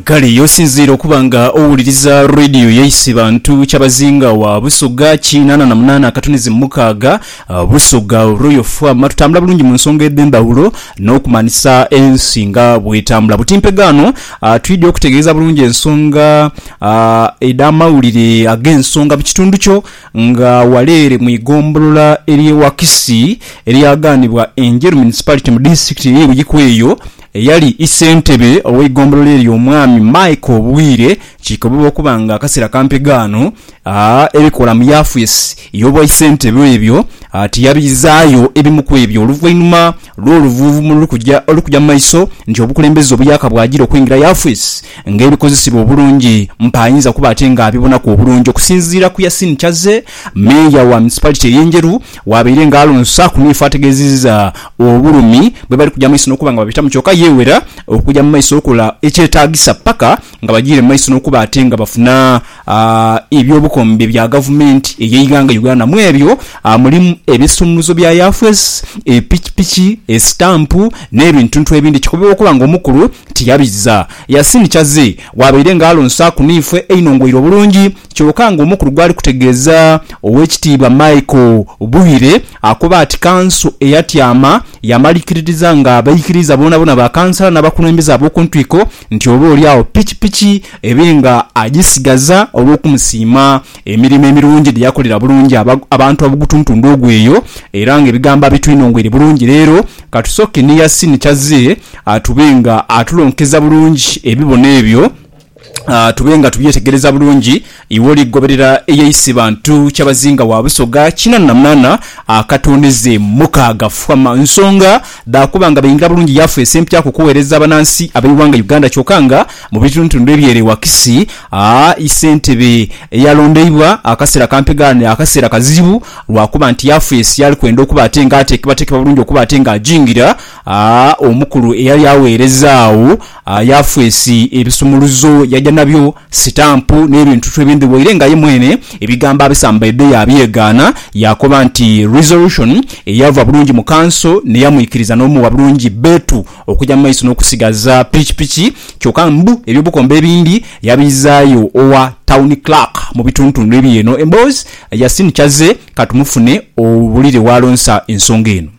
Kale ye osinziire okuba nga owuliriza Radio ya Isibantu Kyabazinga wa Busoga kinaana na munaana akatunezi mukaaga Busoga Royal FM. Tutambula bulungi mu nsonga edh'endhawulo n'okumanhisa ensi nga bw'etambula. Buti mpegaano twidhi okutegeeza bulungi ensonga edh'amawulire ag'ensonga mu kitundu kyo Nga ghale ere mu igombolola ery'e Wakisi eryagaanibwa Enjeru Municipality mu disitulikiti ey'e Buikwe eyo, eyali ssentebe ow'eigombolola eryo Omwami Michael Bwire kikoboba okuba nga akaseera kampi ghano ebikola mu yafesi y'obwaisentebe ebyo tiyabizaayo ebimu ku ebyo oluvainhuma lw'oluvuuvumo oluli kugya mu maiso nti obukulembeze obuyaka bwagira okwingira yafesi Nga ebikozesebwa obulungi, mpa ayinza kuba ate nga abibonaku obulungi okusinziira ku Yasin ky'azze Meeya wa Municipality ey'e Njeru w'abaire nga alonsa ku Niifa ategeezezza obulumi bwebali kugya mu maiso n'okuba nga babitamu kyoka yeewera okugya mu maiso okukola ekyetaagisa paka nga bagiire mu maiso n'okuba ate nga bafuna a eby'obukombe bya gavumenti ey'eighanga Uganda. Mu ebyo mulimu ebisumuluzo bya yafes, epikipiki, esitampu n'ebintuntu ebindi. Kikobebwa okuba nga omukulu tiyabizza Yasin Chaze bw'abaire nga alonsaaku niifwe einhongweire obulungi kyoka nga omukulu gwali kutegeeza Owekitiibwa Michael Buhire akoba ati kanso eyatyama yamalikiririza nga abaikiriiza boonabona ba kansala n'abakulembeze ab'okuntwiko nti oba oli agho pikipiki ebe nga agisigaza olw'okumusiima emirimo emirungi dhe yakolera bulungi abantu ab'ogutuntundu ogwo eyo, era nga ebigambo abitwinongweire bulungi leero. Ka tusooke ni Yasin ky'azze tube nga atulonkeza bulungi ebibono ebyo, tube nga tubyetegereza bulungi. Iwe oligoberera eyeisi bantu kyabazinga wa Busoga kinana na munana akatondeze mukaaga fwama nsonga dha kuba nga beingira bulungi yafeesi empya ku kuwereza abanansi abeighanga Uganda kyoka nga mu bitundutundu ebyere wakisi a sentebe eyalondeibwa akasera kampegha ne akasera kazibu lwa kuba nti yafeesi yali kwenda okuba ate nga atekebatekebwa bulungi okuba ate nga ajingira a omukulu eyali awereza agho A Yafesi ebisumuluzo yaja na byo, sitampu n'ebintutu ebindi waire nga ye mwene ebigambo abisambaidde yaabyegaana. Yaakoba nti Resolution eyava bulungi mu kanso n'eyamwikiriza n'omuwa bulungi bbeetu okuja mu maiso n'okusigaza pikipiki kyokka mbu eby'obukombe ebindi yabizaayo owa Town Clerk mu bituntundu eby'eno emboozi. Yasin Kyazze, ka tumufune owulire w'alonsa ensonga eno.